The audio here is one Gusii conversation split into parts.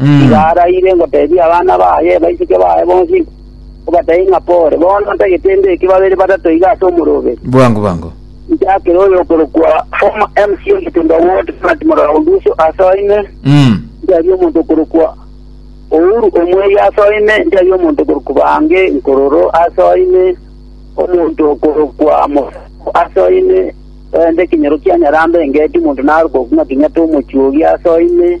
Iga araire ngoteebie abana baye baiseke baye bonsi, obatebie ng'a pore, bono ntagete mbeke babere batato iga ase omoroberi. Bwango bwango. Njakere oyokorokwa former MC o Getemba Ward, Ronald Morora Oduso, ase oime. Mm. Njarie omonto okorokwa Ouru Omweri ase oime. Njarie omonto okorokwa Bange Nkororo ase oime. Omonto okorokwa Mosako ase oime. Oende ekenyoro kia Nyarambe engeti omonto narokokwa ng'a Kenyatta Omochuogi ase oime.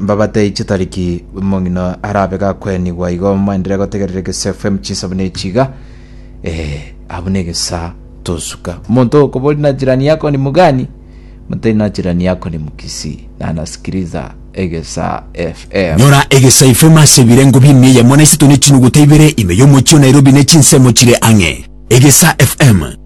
mbabatei chitariki omong'ina arabe gakwenigwa igo mwaendire gotegerera egesaa fm chinsa buna echi iga Eh, abwo na egesaa tosuka omonto okobori na jirani yako ni mugani motari na jirani yako ni mukisi nanasikiriza egesaa fm Nyora egesaa fm ase ebirengo bi'emi eyemo na isato ne chinuguta ibere ime y'omochie o Nairobi ne chinsemo chire ang'e. Egesaa fm